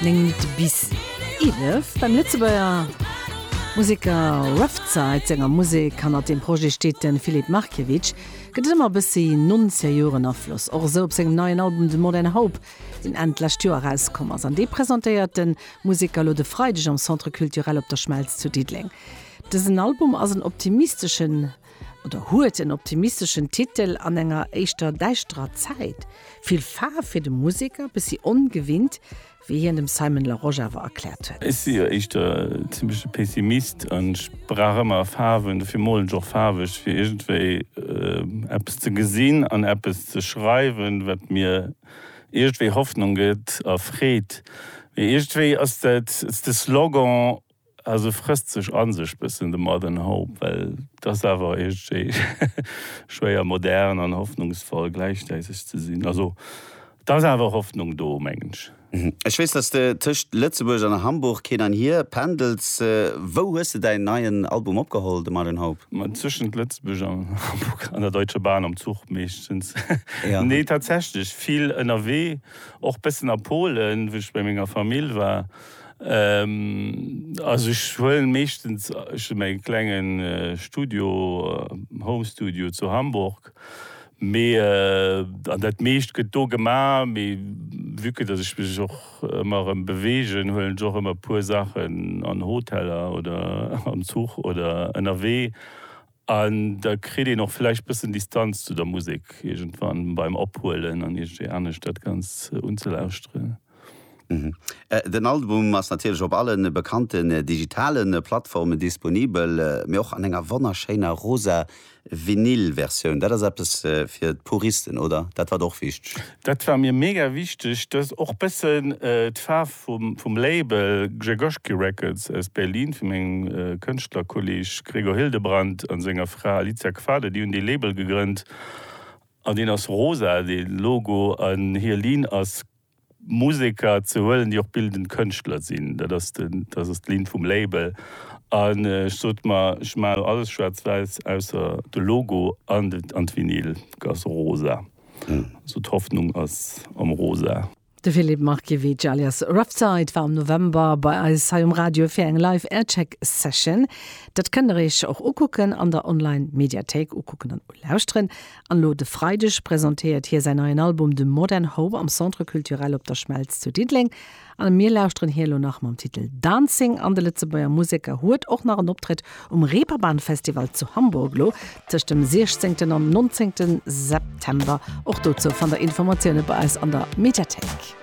9 Minutte bis 11 beim Lëtzebuerger Museker Ruffzeit senger Musek. Hannert dem Projet steet de Filip Markiewicz. Gëtt et ëmmer e bëssi Nonzejoeren-Afloss. Och esou op sengem neien Album The Modern Hope, deen Enn d'lescht Joer erauskomm ass. An dee presentéiert de Museker elo de Freideg am Centre Culturel Op der Schmelz zu Diddeleng. Dësen Album ass en optimisteschen. Oder huet en optimisteschen Titel an enger éischter däischterer Zäit. Vill Faarf fir de Museker, bëssi ongewinnt, wéi hien dem Simon Larosche awer erkläert huet. Ech si jo éischter en zimmleche Pessimist an ech brauch ëmmer Faarwen. Dofir molen ech och faarweg, fir iergendwéi eppes ze gesinn an eppes ze schreiwen, wat mir iergendwéi Hoffnung gëtt a Freed. Mee iergendwéi ass dat de Slogan, Ah se frësst sech an sech bëssen de Modern Hope, well et ass awer iergendwéi schwéier modern an hoffnungsvoll gläichzäiteg ze sinn. Also et ass awer Hoffnung do, mengen ech. Ech weess, dass de tëscht Lëtzebuerg an Hamburg hin an hier pendels. Wou hues de däin neien Album opgeholl, de Modern Hope? Ma tëschent Lëtzebuerg an Hamburg an der Deutsche Bahn, am Zuch meeschtens. Nee, tatsächlech vill ënnerwee, och bëssen a Polen, wou ech bei menger Famill war. Also ech huelen meeschtens, ech hu mäi klengen Studio, Home Studio zu Hamburg, mee an dat meescht gëtt do gema, mee vue que dass ech mech och ëmmer erëm beweegen, huelen ech och ëmmer e puer Saachen an Hoteller oder am Zuch oder ënnerwee. An da kritt een och vläicht bëssen Distanz zu der Musek iergendwann beim Ophuelen an iergendwéi anescht dat Ganzt unzelauschteren. Den Album ass natierlech op alle bekannten digitale Plattformen disponibel, mee och an enger wonnerschéiner rosa Vinyl-Versioun. Dat ass eppes fir d'Puristen, oder? Dat war der och wichteg. Dat war mir mega wichteg, dass och bëssen d'Faarf vum Label Grzegorski Records aus Berlin, vum mengem Kënschtlerkolleg Gregor Hildebrandt a senger Fra Alicia Kvader, déi hunn dee Label gegrënnt an deen ass rosa, dee Logo, an hir Linn ass Museker ze huelen, déi och bildend Kënschtler sinn. Dat ass d'Linn vum Label. An ech sot mer, ech maachen alles schwaarz-wäiss, ausser de Logo an d'Vinyl ass rosa. Also d'Hoffnung ass am Rosa. De Filip Markiewicz alias Roughside war am November bei eis hei um Radio fir eng live Aircheck Session. Dat kënnt der iech och ukucken an der Online Mediathéik, ukucken an ulauschteren. An elo de Freideg presentéiert hie säin neien Album The Modern Home am Centre Culturel Op der Schmelz zu Diddeleng. A mir lauschteren hir elo nach mam Titel Dancing an de Lëtzebuerger Museker huet och nach en Optrëtt um Reeperbahn Festival zu Hamburg elo tëscht dem 16 an 19 September. Och dozou fannt der Informatioune bei eis an der Mediathéik.